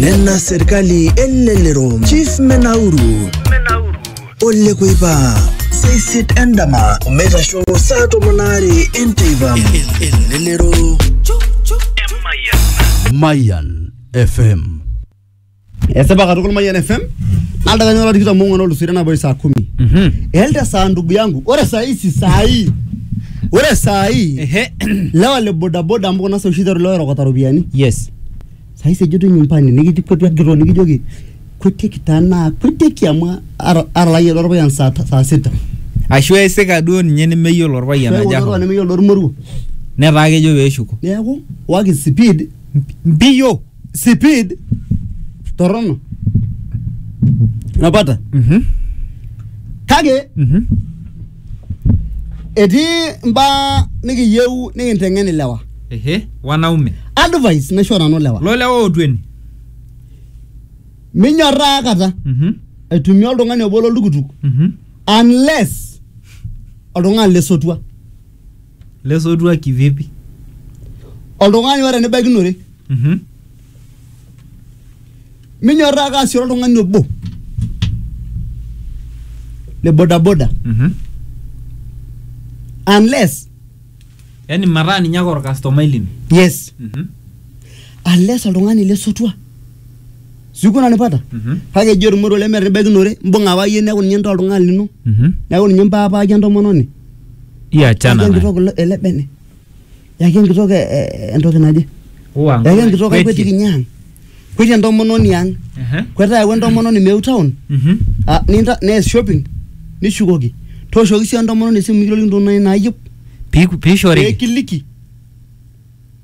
nena serkali elelero chief menauru ole kuipa seisit endama omeitasho saa tomon aare enteipa elelero Mayan FM Esipa katukul Mayian FM. Aldakani ora tikitam ong'uan olusito enaboi saa kumi. Elde saa ndugu yangu, ore saa hii si saa hii. Ore saa hii Ehe. lewa le bodaboda amu kuna saa oshi iteru lewa erokota ropiyiani. Yes. Saa hii sejoto nyumbani nikiji kwetu agiroo nikijoki kwetieki taa naa kwetieki amu ara- aralayie lorpayian saa ta- saa sita. Ashu esika duo ninye nemeyiolo orpayian Keeku aja. oltung'ani nemeyiolo ormoruo. Netaa kejo peeshuko. Neeku waki speed Mpiyo. sipid torrono napata Mhm. kake Mhm. etii mbaa nikiyieu nikinteng'en ilewa Ehe. Wanaume. advice naisho nanu lewa Lo lewa ootweni. minyorraa kata Mhm. aitumia oltung'ani obo loltukutuk Mhm. unless oltung'ani lesotua Lesotua kivipi? Oltung'ani oata enibaikinore. Mhm. Minyorraa ake aasishore oltung'ani obo le bodaboda Mhm. unless Yaani mataa ninye ake orkastomai lino. yes Mhm. unless oltung'ani lesotua siku nanipata kake eji etumore lemetebekinore mbung'a apa iyie neeku ninye ntaa oltung'ani lino Mhm. neeku ninye mpaapaki entomononi Iya achana yaki naye. enkitok ele- ele bene yaki enkitok e- e- entoki naje Uwa yaki ng'ole, enkitok kwetie. akwetiki ninye ang kwetie entomononi ang Ehe. kwetaa ayau entomononi meu town Mhm. Ah, ninta nees shopping nishukoki tooshoki sii entomononi esimu mikirorokinoto nai nayieu Piku- pee Piishoriki. kiliki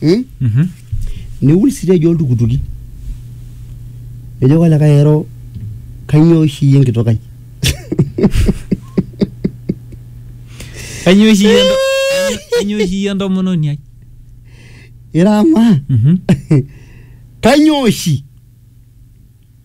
hmm? Mhm. niul siteji oltukutuki nejoki olikae ero kanyoo oshi iyie enkitok ai Kanyoo oshi iyie ento- kanyoo oshi iyie entomononi ai? ira amaa Mhm. kanyoo oshi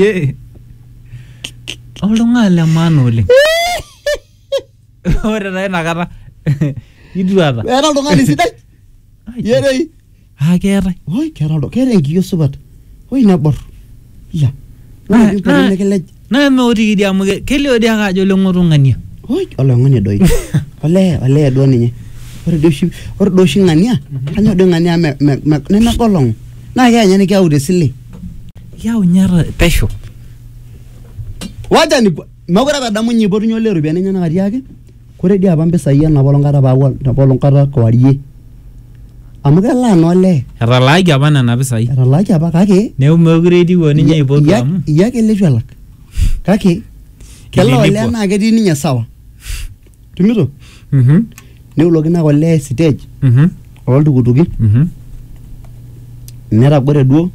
ye oltung'ani le maana oleng ore taa inakata ituata Era oltung'ani sidai. Yerei. aa keetae Oi, kera oldo, kera enkiyo supat. Oi nabor. Ya. Na- Ore na- pipoti nikilej. Naa eme otiki dii amu ke- kelio dii ake ajo leng'otung'ania. Oi, oloing'oni doi. Olee, olee duo ninye. Ore doi oshi, ore doi oshi ng'ania, kanyor doi ng'ania me, me, me, nemegolong'u. Naa keya ninye nikiyau te sile. Kiyau ninye ata pesho. Waja nipo, mekure apa edamu ninye ipotunye olee iropiyiani enyenak atiaki, Kore dii apa mpisai ena polong kata paaku ena polong kata kewarie amu kelaa naa olee Etalaaki apa nena pisai. etalaaki apa kake Neeku meekure etiu o ninye aipotu iya- amu iya ake leitu elak kake kelaa olee Kitilipua. naa ketii ninye sawa tumito Mhm, neulokino ake olee stage mhm, ooltukutuki mhm. netagore duo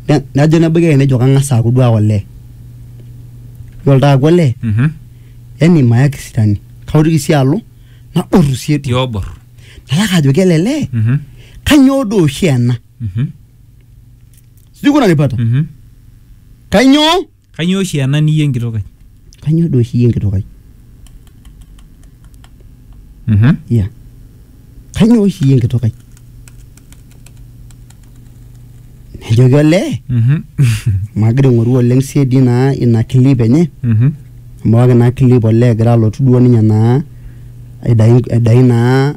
ne- nejo nebaiki ake nejo kang'as aaku duo ake olee yiolo taa aaku olee Mhm. yani mayaki sitani kaotiki sii alo naboru sii edu tiobor nalaka ajoki ele lee Mhm, kanyoo doo oshi ena mhm, sijui kuna nipata mhm. kanyoo kanyoo oshi ena niyie enkitok ai kanyoo doo oshi iyie enkitok ai Mhm. yeah kainyoo oshi iyie enkitok ai nejoki olee Mhm. magira aing'oru oleng siedi naa ina clip enye Mhm. amu ewaki naa clip olee egira alotu duo ninye naa aidai aidai naa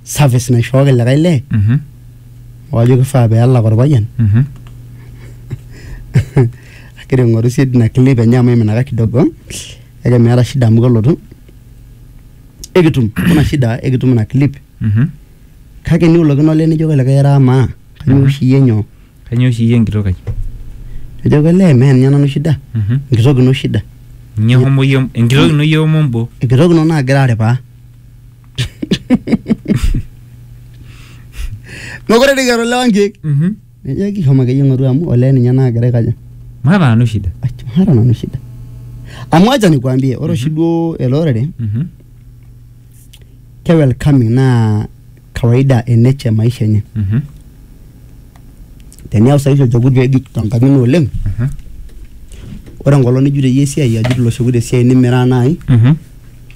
service naishooki likae lee Mhm. wajo kifaa peelak orpayian Mhm. agira aing'oru siedi ina clip enye amu iminaka kidogo kake meeta shida amu kelotu ekitum kuna shida ekitum ina clip Mhm. kake niulokino olee nijoki olikae era amaa kanyoo oshi iyie nyoo Kanyoo oshi iyie enkitok ai? nijoki olee mee ninye nanu shida Mhm. enkitok ino shida Ninye homo iyie enkitok ino iyie homo mbo. enkitok ino naagira aripaa mekure dii kiata olewa nkeek Mhm. Nejoki shomo akeyie ng'oru amu olee ninye naagira aikaja. Maata nanu shida. Ai, Maata nanu shida. Amu acha nikuambie, ore oshi duo ele orere Mhm. ke welcoming naa kawaida e nature e maisha enye. Mhm. Teniyau saizi olchekut peejut tenkang' ino oleng, Mhm. ore enkolong nijut iyie esiai ajut ilo shekut esiai nimiraa naai, Mhm.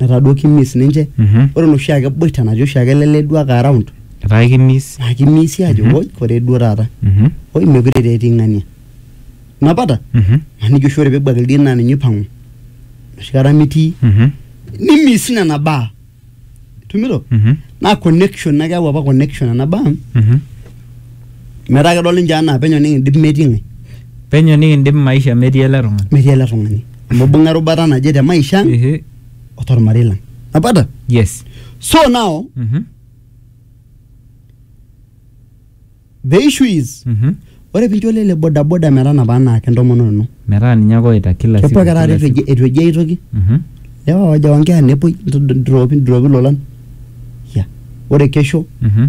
metaa duo kimiss ninche Mhm. ore enoshi ake boita natii oshi ake ele lee duo ake around etaa ekimiss naa kimisi ajo Mhm. oi koree duo taata Mhm. oi mekure taa etii ng'ania napata Mhm. maniki oshi ore pebuak ildien naa ninye oipang'u enoshi kata mitii Mhm. nimiss nena baa tumito Mhm. naa connection naa keyau apa connection nena baa Mhm. metaa kedol ninche anaa penyo nikindim metii ng'ae penyo nikindim maisha metii ele tung'ani metii ele tung'ani Nimibung'a erubata naje te maisha ang Ehe. o tormarei lang. Napata? Yes. So now Mhm. the issue is Mhm. ore pincho lele bodaboda metanapa anaa kentomononi ino. Metaa ninye ake oita kila siku. Kepuo ake taata kila eitu siku. eji- eitu eji aitoki. Mhm. Lewa waja wankera nepuoi dropi dropi lolan. Ya. Ore kesho Mhm.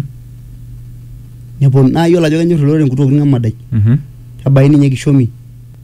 neponu naa yiolo ajo kenyor ilorere nkutuoki ng'amadai. Mhm. Kebaiki ninye kishomi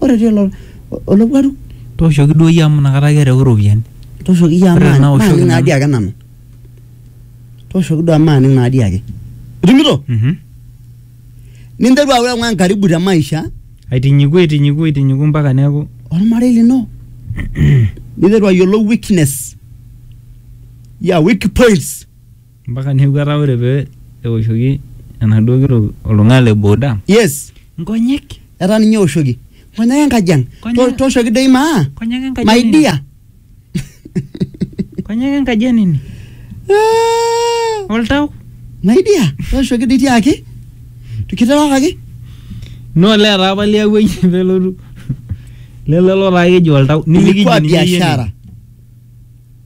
Ore etii olo- olowuaru, Tooshoki duo iyie amu inakata ake erewu iropiyiani. tooshoki iyie amu Ore tenaa oshoki maaning naadi nanu. ake nanu. Tooshoki duo amu maaning naadi ake. Itumito? Mhm. Ninteru aaku eng'ua enkaribu te maisha Aitinyiku aitinyiku aitinyiku mpaka neeku olmarei lino. Ninteru ayiolou weakness ya weak points. Mpaka neeku etaa ore pee eoshoki enaduo kitok oltung'ani le boda yes nkonyek etaa ninye eoshoki nkonyek enkaji ang Nkonyek- To- tooshoki doi maa nkonyek enkaji my enini. dear Nkonyek enkaji enini. Ah, Oltau. my dear tooshoki doi tiaki kiterewakaki No olee etaa apa liawua iyie pee elotu. Lelo taa keji oltau. Nimikiji ilikuwa ninye iyie biashara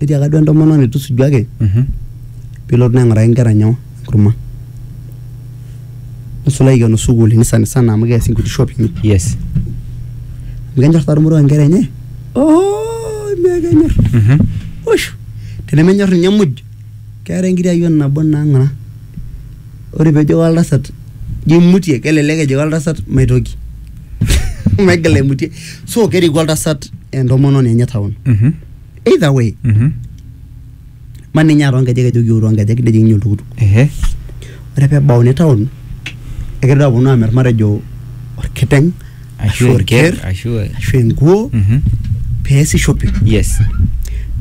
Netiaka duo entomononi tusujuaki Mhm. pilotu naa aing'uraki inkera nyoo enkurma. Nisulo aikeno sukuulini sanisana amu keasi inkuti shopping Yes. amu kenyor taa irmoruak inkera enye ooh mee kenyor. Mhm. Wosh! Tenemenyor ninye muj keetae enkiti ayioni nabo naa ng'ura ore pejoki oltasat jo imutie kelelek ejoki oltasat maitoki maigil aimutie so keriku oltasat entomononi enye town Mhm. either way Mhm. ma ninye aa toonkejek ejoki ou toonkejek nejing ninye oltukutuk Ehe. ore pebauni town ekegira aponu amirr matejo orkiteng ashu orker ashu e- ashu enkuo Mhm. peesi shopping yes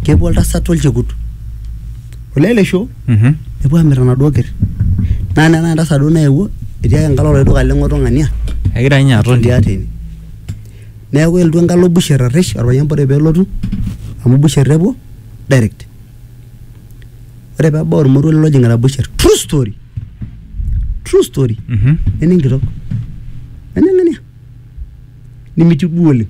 kepuo oltasat olchekut olelesho Mhm. nepuo amir enaduo ker naa nena entasat duo naewuo etii ake enkalo oladuo duka leng'oto ng'ania Egira ninye aton. etii ate ine neeku elotu enkalo busher arrish orpayian bora peelotu amu busher epuo direct ore peebau ormoruo lelo ojing'ita busher true story true story Mhm. nene enkitok nene ng'ania nimitiu duo oleng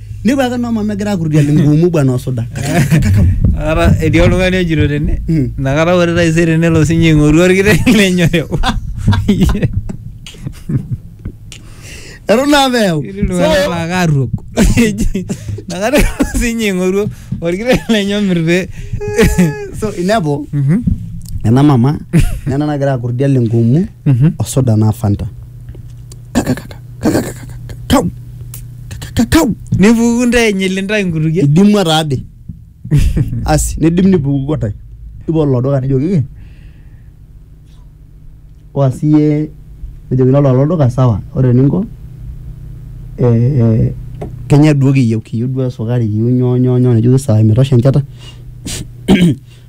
Nepuo ake noo mama egira akurrutian enkuumu bwana osuda. Ara etii oltung'ani ojito tene Mm. inakata ore taisere nelo sinye aing'oru orkiteng lenye oreu. Eton naa peeu. Etii iltung'anak laa kaarruok. Eji, Inakata elo sinye aing'oru orkiteng lenye omir pee. So inepu Mhm, ena mama nena nagira akurrutian enkuumu mhm. osuda naa Fanta. kakakakakakakakakau kakakakau nipuku ntae enyil intae nkutukie idimua taade asi nidim nipukuko ntae nipo lolo duka nijokiki oa siye nejokini ololo duka sawa ore eninko eh, eh, kenya duo kiyieu kiyieu duo esukari kiyieu nyoo nyoo nyoo nejoki sawa imetosha enchata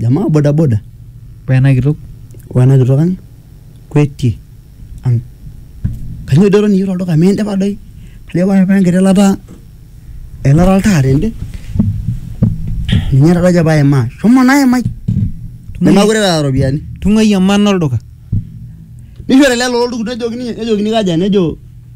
jamaa bodaboda Wena kitok. wena kitok ang kwetie ang kanyoo idoto ninye tolduka miindipa doi kajo pae apa enkiti ilata eilata oltaa tende ninye taata ajo paimaa shomo naimai nemeekure eeta iropiyiani Tung'uai emana olduka. nishori lelo oltukutuk nejokini nejokini kaja nejo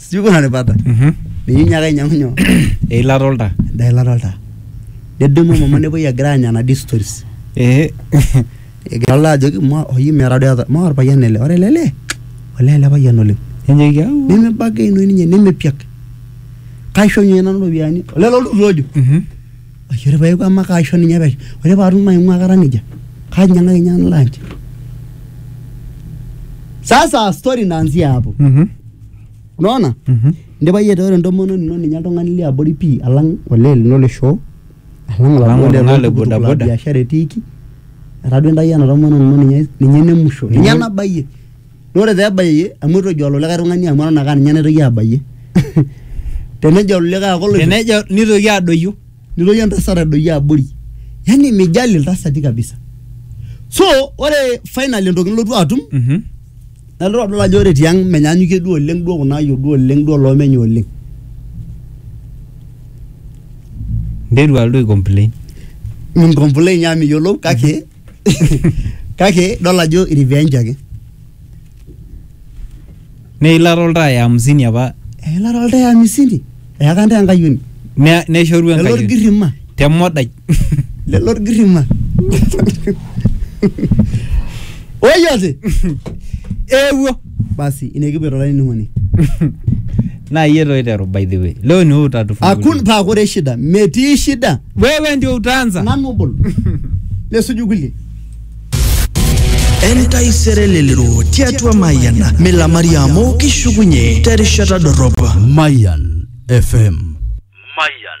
sijui kuna ripata Mhm. ninye inyiaka ainyiang'u nyoo eilata oltaa endaa eilata oltaa nedumu mama nepuoi egira aanya nadi stories ee egira olaa ajoki "Ma- oyi meeta doi ata- maa orpayian ele ore ele lee olee ele payian oleng enyeiki au nemebagainoi ninye nemepiak kaisho ninye nanu iropiyiani olelo oltukutuk ojo Mhm. Ashe ore paeku ama kaisho ninye pesho ore paatum maing'ua kata nejia kainyiang'aki ninye lunch sasa story inaanzia hapo Mhm. unaona Mhm. indipa yie ataa ore entomononi ino ninye oltung'ani liabori pii alang olee lino le shoo alang Alang oladuo oltung'ani le loltukutuk la bodaboda. biashara etiiki etaa duo intayio ena tomononi ino ninye ninye ene musho ninye Ninye- nabayie naa ore pebayie amu itu ejo olikae tung'ani amu eton ake aninye naitoki abayie tenejo olikae ake oloito tenejo nitoki adoyio nitoki entasat adoyio abori yani mijali iltasati kabisa so ore finally entoki nilotu atum Mhm. nalotu adol ajo ore tiang menyanyukie duo oleng duo kuna ayiok duo oleng duo loomenye oleng nteru alotu ai complain mincomplain amu miyiolou kake kake idol ajo revenge ake neilata oltaa ya hamsini apa eilata oltaa ya hamsini eyaka ntae enkayioni ne- neshoru lelo enkayioni orgirrima te modai lelo orgirrima oyote eewuo basi inekipuoto olainining'oni na iye ndo oiteru by the way leo ni wewe utatufungulia akun paa kore shida metii shida wewe ndio utaanza nanu obol nesuju kulie entaisere lelero tiatua mayian milamari amu kishukunye terishata dorrop Mayan FM. Mayan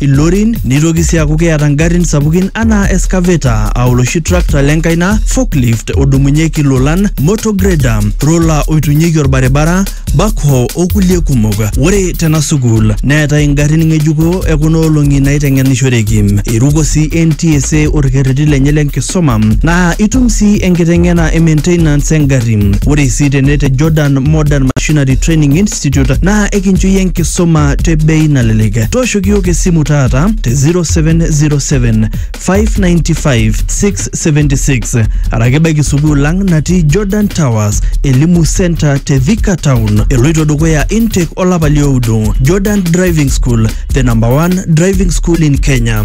ilorin neitoki sii aaku keeta ngarrin sapukin anaa excavator aa oloshi tractor lenkaina forklift odumunyieki ilolan motor grader roller oitunyeki orbaribara backhoe okulie kumok ore tena sukuul neetai ingarrin ng'ejuko ekuna olong'i naiteng'enishoreki eiruko sii NTSA orkerreti lenye lenkisuma naa itum sii enkiteng'ena e maintenance engarri ore sii tene te Jordan Modern Machinery Training Institute naa ekincho iyie enkisuma te bei nalelek Tooshoki iyiook esimu taata te 0707 595 676 araki ebaiki sukuul ang natii Jordan Towers Elimu Center te Thika Town. Eloito dukuya intake olapa lioudo. Jordan Driving School, the number one driving school in Kenya.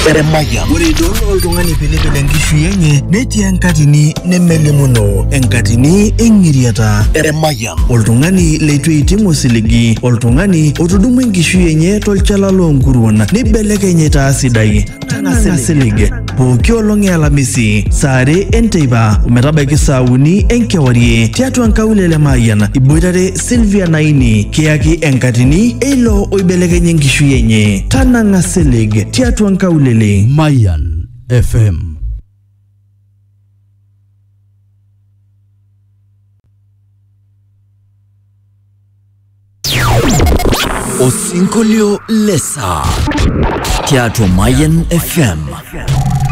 Eremaya. Ore idol oltung'ani pilipil enkishui enye netii enkatini nemelimuno, enkatini eng'iriata. Eremaya. Oltung'ani leitu eiting osiligi, oltung'ani otudumua enkishui enye tolchala loonkuruon neibelekeny aitaa sidai. Tang'asa isilig. pooki olong e alamisi saa are enteipa ometabaiki saa uni enkewarie tiatua nkaulele Mayian iboitare Sylvia Naini kiyaki enkatini eilo oibelekenye enkishui enye tanang'a silig tiatua nkaulele Mayan FM. Osinkolio le saa tiatua Mayan FM.